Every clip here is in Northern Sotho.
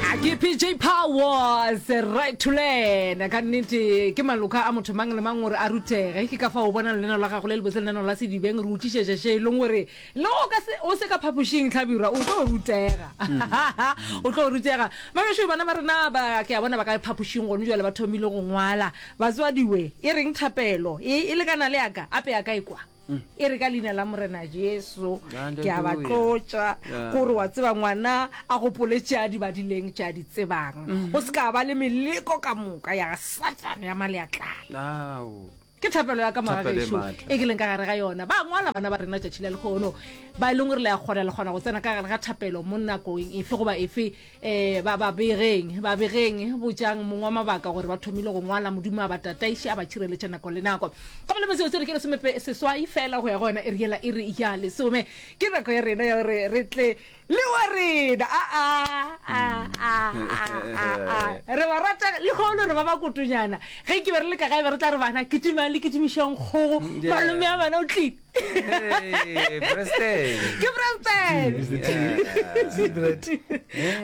a ke pj powers right to learn ka nnete ke maloka a motho mang le mang gore a rutege ke ka fa o bona leneno la gago le lebotse leneno la sedibeng re utlišetša še e leng gore le o ka se- o se ka phapošing tlhabirwa o tlo rutega o tlo rutega mabešu bana ba rena ba ke a bona ba ka phapošing gone jale ba thomile go ngwala batswadiwe e reng thapelo e e lekana le yaka ape yaka e kwa e re ka leina la morena jesu ke a ba tlotša gore wa tseba ngwana a gopole tše a di badileng tše a di tsebang mm-hmm. go se ka ba le meleko ka moka ya satane ya maleatlana ke thapelo ya ka magageso e ke leng ka gare ga yona ba ngwala bana ba rena tšatši la lekgono ba e leng gore le ya kgona le kgona go tsena ka gare ga thapelo mo nakong efe goba efe Eh, ba ba begeng ba begeng botšang mongwe wa mabaka gore ba thomile go ngwala modimo a ba tataiše a ba tšhireletša nako le nako ka molemo seo se re ke lesomepe seswai fela go ya go yona e riela e re ya lesome ke nako ya rena ya gore re tle le wa rena re ba rata lekgolo re ba ba kotonyana ge ke be re le ka gae be re tla re bana kitimang le kitimišang kgogo mm, malome a bana o tlile Hey, Preston. ke preston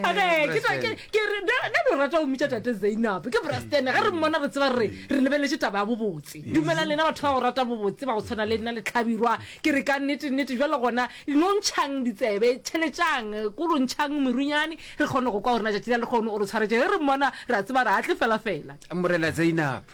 Okay, ke tla- ke- ke re- na- na lo rata go mmitša tate zainab ke braston ge re mmona re tseba re re lebeletse taba ya bobotse dumela lena batho ba go rata bobotse ba go tshwana le nna letlhabirwa ke re ka nnete nnete jalo gona no ntšhang ditsebe tšheletšang ko lo ntšhang merunyane re kgone go kwa gore na tšatši la le kgone o re tshwaretse ge re mmona re a tseba re atle fela fela morena zainab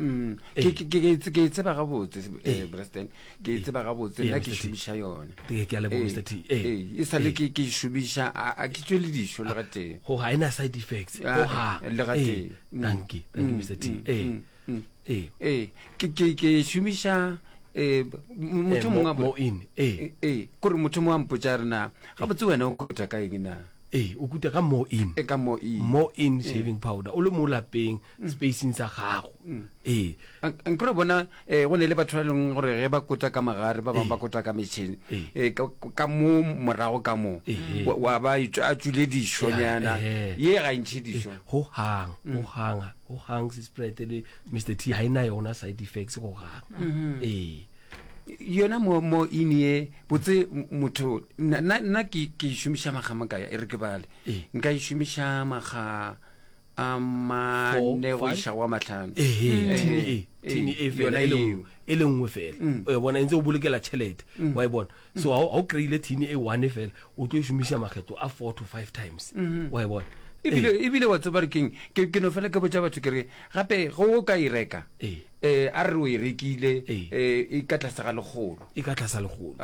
Mm. Eh. ke e tseba gabotse eh, eh. braston ke e tseba gabotse nna ke šomiša yone e sale ke e šomiša a ke tswe le dišo le gateng go ga e na side effects ah, ah, le gateng mm. thank you thank you mm, mr t ee ke e šomiša motho mongwe kore motho mongwe a mpotsa rena gabotse wena o kota ka eng na ee o kuta ka more in e ka more in more in shaving powder o le mo lapeng spacing sa gago ee nkore bona um go ne le batho ba e leng gore ge ba kota ka magare ba bangwe ba kota ka metšhene um ka mo morago ka moo wa ba a tswile dišonyana ye ga ntšhe dišo go gang go ganga go gang sesprete le mr t ga e na yona side effects go gang ee yona mo mo in ye botse motho nna ke ke šomiša maga makaya e re ke bale nka e šomiša maga a mane go iša go a matlhano yona eo e le nngwe fela mm. o e bona e ntse o bolokela tšhelete mm. wa e bona mm. so ga o kry-ile thini e one fela o tlo e šomiša makgetlo a four to five times mm-hmm. wa e bona ebile wa tseba re keng ke no fela ke botsa batho ke re gape go o ka e reka um a re o e rekile um e ka tlase ga legolo e ka tlasa legolo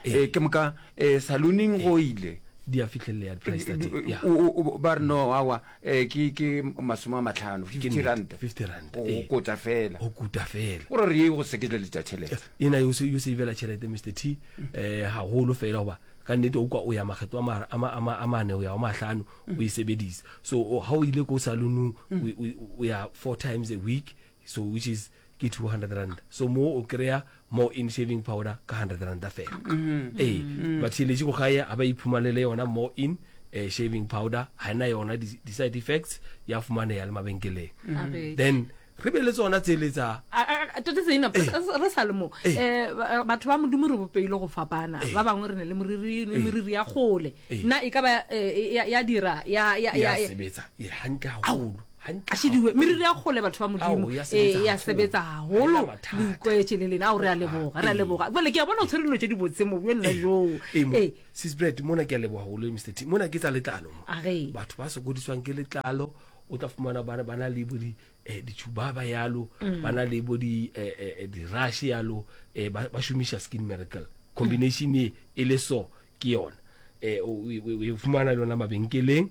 ke moka eh, saluning go ile di a fihlelelea di-price tsa teng ya O- o- o- ba re no awa eh, ke ke masome a matlhano fifty nnete, rand 50 rand, go ee. kota fela go kuta fela gore re ye go sekeletsa tšhelete ena yo se yo se ibela tšhelete Mr T eh haholo fela goba ka nnete o kwa o ya makgetlo a ma- a ma- a ma- a mane o ya wa mahlano o e sebedisa so o- ha o ile ko salonong o- o- o ya four times a week So which is ke 200 rand so mo o kry-a more in shaving powder ka 100 randa fela mm-hmm. ee mm-hmm. but theletše go gae a ba iphumanele yona more in uh, shaving powder ga ena yona di-side effects ya fumaneya le mabenkeleng mm-hmm. then re be le tsona tseletsa tote seina eh. re sa le mo eh. Eh, batho ba modimo re bopeile go fapana ba bangwe re ne le moriri le moriri ya gole nna e ka ba ya dira ya sebetsa hantle haholo a šediwe meriri ya kgole batho ba modimo ee ya sebetsa gagolo le ikweše le lena ao re a leboga re a leboga bole ke a bona o tshwere dilo tse di botse mo bjone joo ee sisbred mona ke a leboga golo mr t mona ke tsa letlalo mo batho ba sokodiswang ke letlalo o tla fumana bana bana le bo di eh ditshubaba yalo mm. bana le bo di eh, eh, eh di rush yalo eh ba, ba shumisha skin miracle combination e e le so ke yona eh o fumana lona mabenkeleng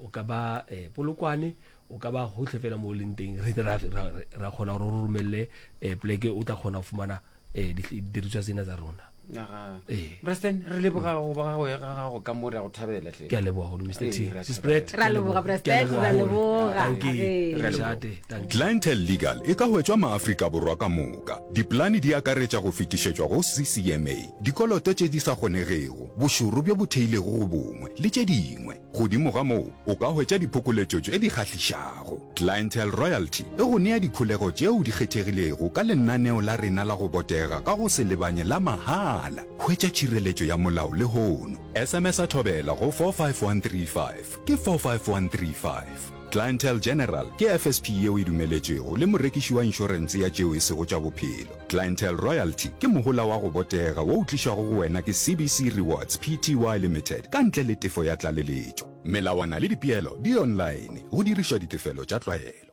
o ka ba eh, polokwane o ka ba gotlhe fela mo o leng teng re ra kgona gore o romelele um eh, pleke o tla kgona go fumana um didiriswa tsena tsa rona president re leboga go ba gago ya gago ka mo re ya go thabela tle ke a leboga go mr t spread ra leboga president ra leboga clientele legal e ka hwetšwa maafrika borwa ka moka dipolane di akaretša go fetišetšwa go ccma dikoloto tše di sa kgonegego bošoro bjo bo theilego go bongwe le tše dingwe Godimo ga moo, o ka hwetša diphokoletšo tše di kgahlišago. Clientele Royalty e go nea dikholego tšeo di kgethegilego ka lenaneo la rena la go botega ka go se lebanye la mahala. Hwetša tšhireletšo ya molao lehono. SMS-a Thobela go 45135, ke 45135. Clientele General ke FSP yeo e dumeletšwego le morekiši wa inšorense ya tšeo e sego tša bophelo. Clientele Royalty ke mohola wa go botega wo o tlišwago go wena ke CBC Rewards Pty Limited ka ntle le tefo ya tlaleletšo. Melawana le dipeelo di online go dirišwa ditefelo tša tlwaelo.